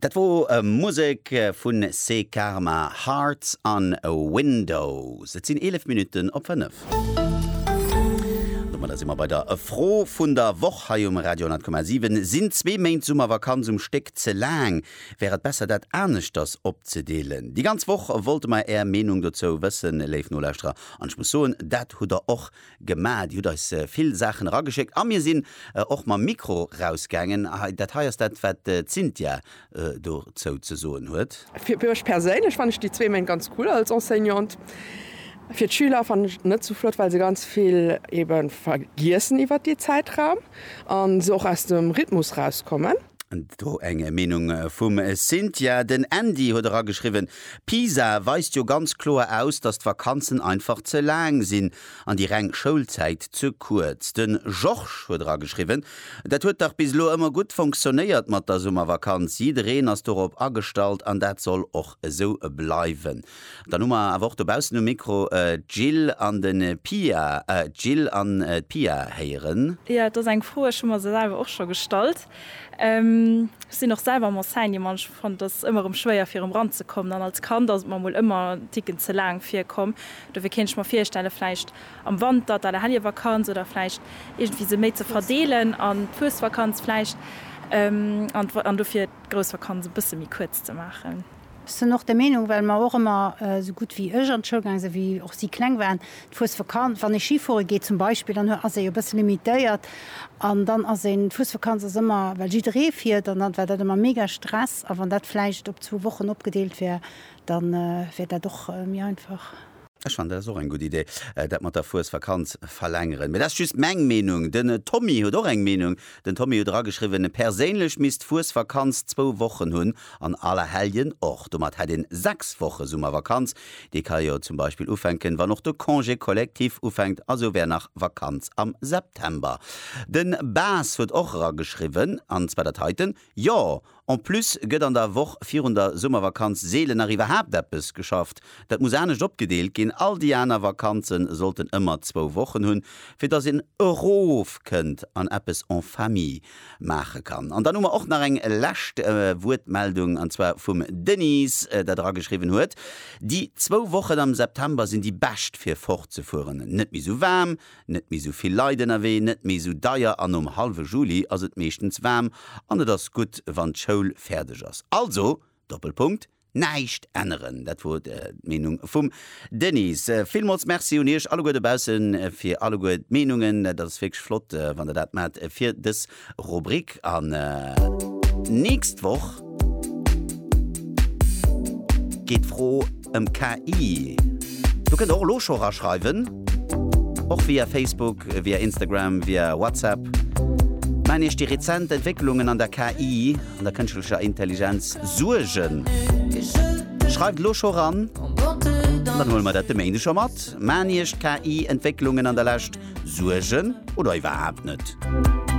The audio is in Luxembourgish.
Dat wor Musek vun Se Karma, Hearts an Windows. Et sinn 11 Minutten op 5. Domadder si mer bei der Fro vun der Woch hei um Radio 10,7. Sinn zwee Méint Summervakanz um Stéck ze laang? Wär et besser dat aneschters opzedeelen? Déi ganz Woch wollte mer är Meenung dozou wëssen, léif Nolauschterer, an ech muss soen, dat hutt der och Gemaach. Dir hutt eis vill Saachen erageschéckt a mir sinn och mam Mikro rausgaangen. Dat hei ass dat, wat d'Cynthia dozou ze soen huet. Fir mech perséinlech fannen ech déi zwee Méint ganz cool als Enseignante. Fir d'Schüler fannen ech et net sou flott, well se ganz vill ebe vergiessen iwwert dee Zäitraum a se och aus dem Rhythmus rauskommen. Do eng Meenung vum Cynthia. Den Andy huet erageschriwwen, Pisa weist jo ganz kloer aus, datt d'Vakanzen einfach ze laang sinn an déi reng Schoulzäit ze kuerz. De Georges huet erageschriwwen, Dat huet dach bis elo ëmmer gutt fonctionnéiert mat der Summervakanz, jiddereen ass dorop agestallt an dat soll och esou bleiwen. Dann hu mer awer och dobaussen um Mikro d'Jill an de Pia. D'Jill an d'Pia héieren. Jo, et ass eng Fro, ech hu mer se selwer och scho gestallt. Ech sinn och selwer am Enseignement an ech fannen et ëmmer erëm schwéier fir erëm ranzekommen an als Kand ass et mer mol ëmmer en Ticken ze laang virkomm. Dofir kéint ech mer virstelle vläicht am Wanter d'Allerhellevakanz oder vläicht iergendwéi se méi ze verdeelen an d'Fuesvakanz vläicht an dofir d'Groussvakanz e bësse méi kuerz ze maachen. Sen och der Meenung, well mer och emmer, sou gutt wéi ech an d'Schoul gaang sen, wéi och si kleng waren, du fuers Vakanz, wann ee Schi fuere geet zum Beispill, dann ass ee jo e bësse limitéiert an dann ass een, d'Fuesvakanz ass ëmmer, well jidderee fiert an dann war dat ëmmer mega Stress a wann dat vläicht op zwou Wochen opgedeelt wär, dann wär dat och méi einfach. Ech fannen dat ass och eng gutt Idee, dat mat der Fuesvakanz verlängeren. Mee dat ass just meng Meenung. Den Tommy huet och eng Meenung. Den Tommy huet erageschriwwen, Perséinlech misst d'Fuesvakanz zwou Wochen hunn an Allerhelljen och. Domat hätt een sechs Woche Summervakanz. Déi ka jo zum Beispill ufänken, wann och de Congé collectif ufänkt. A sou wär nach Vakanz am September. Den Bas huet och erageschriwwen, an zwar dat heiten, Jo, en plus gëtt an der Woch virun der Summervakanz seelen nach iwwerhaapt eppes geschafft. Dat muss anescht opgedeelt ginn. All déi aner Vakanze sollten ëmmer zwou Wochen hunn, fir datt een erofkënnt an eppes en famille maache kann. An dann hu mer och nach eng lescht Wuertmeldung, an zwar vum Denys, dat erageschriwwen huet, Déi zwou Wochen am September sinn déi bescht, fir fortzefueren. Net méi esou waarm, Net méi sou vill Leit ënnerwee, net méi sou deier an nom hallwe Juli ass et meeschtens waarm an et ass gutt wann d'Schoul fäerdeg ass. Also, Doppelpunkt, näischt änneren. Dat wor d'Meenung vum Denys. Villmools Merci un Iech alleguer dobaussen fir alleguer d'Meenungen. Dat ass wierklech flott wann der dat maacht fir dës Rubrik an nächst Woch geet d'Fro ëm KI. Do kënnt der och elo scho raschreiwen, och via Facebook, via Instagram, via WhatsApp. Maachen Iech déi rezent Entwécklungen an der KI, an der kënschtlecher Intelligenz, Suergen? Schreift elo scho ran, an dann huele mer dat de Méinde scho mat. Maachen Iech d'KI-Entwécklungen an der Lescht Suergen oder iwwerhaapt net?